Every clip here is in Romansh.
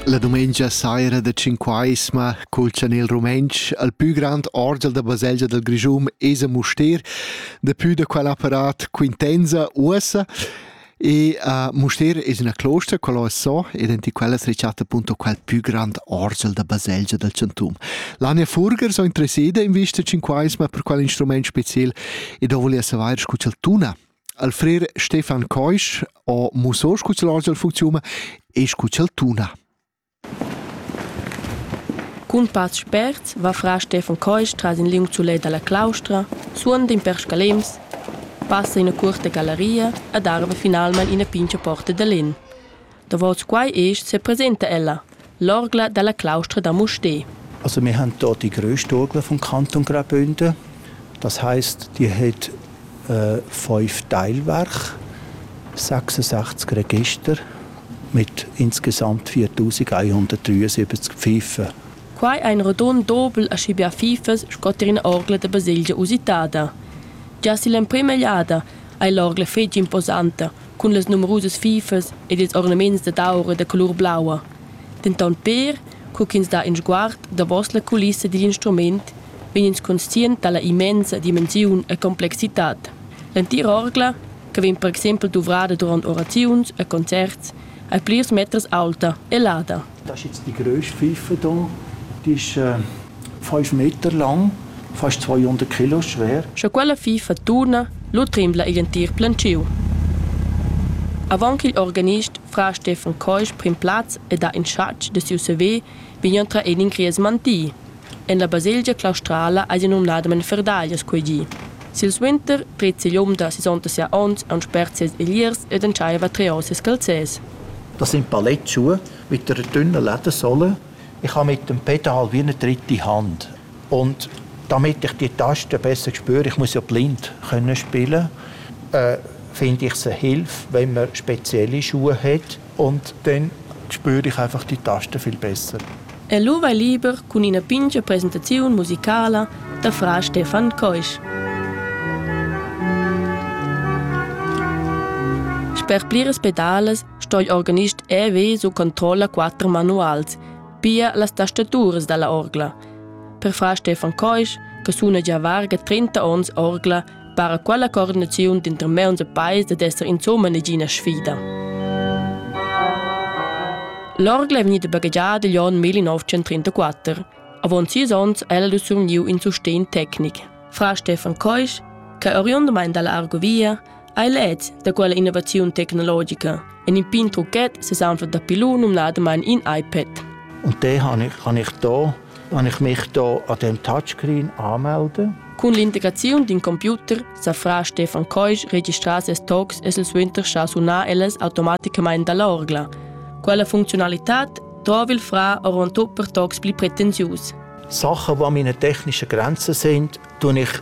La dumengia saira da Cinquaisma cul chanel rumentsch al pü grand orgel da baselgia del Grischun es a Mustér, dapü da quel apparat quintenza uossa e a Mustér es üna closta quello es so ed enti quella es rechatta appunto quel pü grand orgel da baselgia del Chantum. L'Ania Furger so interesseda in vista Cinquaisma per quel instrument special e do volia savair scu ch'el tuna al frer Stefan Keusch ho musso scu ch'el hoz il funcziun e scu ch'el tuna. Cun pass spert va fra Stefan Keusch tras in liung sulet dalla claustra, suonda in per scalems, passa ina cuorta gallaria ed arva finalmein ina pincha porta da lenn. Davos quai isch sepresenta ella, l'orgla dalla claustra da Mustér. Also wir haben dort die größte Orgel vom Kanton Graubünden. Das heißt, die hat äh, fünf Teilwerke, 66 Register mit insgesamt 4173 Pfeifen. Quai ein rodon dobel aschi bia fifas sco tier ina orgla da baselgia usitada. Già si l'emprima egliada ei l'orgla fetg imposanta, cun las numerusas fifas ed ils ornaments dad aur e da colur blaua, denton pér co ch'ins dà in sguard davos la culissa digl instrument, vegn ins conscient dalla immensa dimensiun e complexitad. L'entira orgla, che vegn per exempel duvrada duront oraziuns e concerts, ei plirs meters aulta e lada. Das ist jetzt die größte Pfeife hier. Die ist äh, 5 Meter lang, fast 200 Kilo schwer. Sche quella fifa turna, lo trembla igl entir plantschiu. Avant ch'il organist fra Stefan Keusch pren plaz ed ha in schatg de siu CV, vegn entra en in gries manti. En la baselgia claustrala eisi numnadamain ferdaglias quei di. Silsuenter preza igl um da sisonta sia onns aunc spert ses egliers ed entscheiva treor ses calzers. Da sind Ballett zu mit einer dünnen Ledersohle. Ich habe mit dem Peter halb wie eine dritte Hand. Und damit ich die Tasten besser spüre, ich muss ja blind können spielen, äh, finde ich es eine Hilfe, wenn man spezielle Schuhe hat. Und dann spür ich einfach die Taste viel besser. E lu vai liber cun ina pintga presentaziun musicala da fra Stefan Keusch. Per pliras pedales sto il organist EW su controlla quatter manuals, pia las tastaturas dalla orgla. Per fra Stefan Keusch, che suna già varga 30 ons orgla, para quella coordinaziun dinter mauns e pais dad esser insomma negina sfida. L'orgla è vegnida baghegiada igl onn 1934. Avon sis onns è ella survgniu in sustegn tecnic. Fra Stefan Keusch, che è oriundamain dalla Argovia, ha led da quella innovaziun tecnologica en in pin trucchet sesanfla da pilun numnadamain in iPad. Und den habe ich, habe ich hier Wenn ich mich da an dem Touchscreen anmelde. Cun l'integraziun d'in computer sa fra Stefan Keusch registrà ses talks e sul suenter scha sunar ellas automaticamain da l'orgla. Quella funzionalità trova il fra ora per talks pli pretensius. Sachen, die meine technischen Grenzen sind, tue ich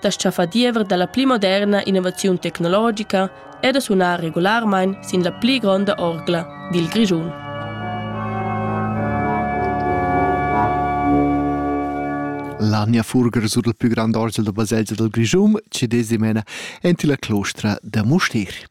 da tschaffar diever dalla pli moderna innovaziun tecnologica e da sunar regularmain sin la pli gronda orgla dil Grischun. L'Ania Furger sur il più grande orgel da baselgia del Grischun ci desimena enti la clostra da Mustir.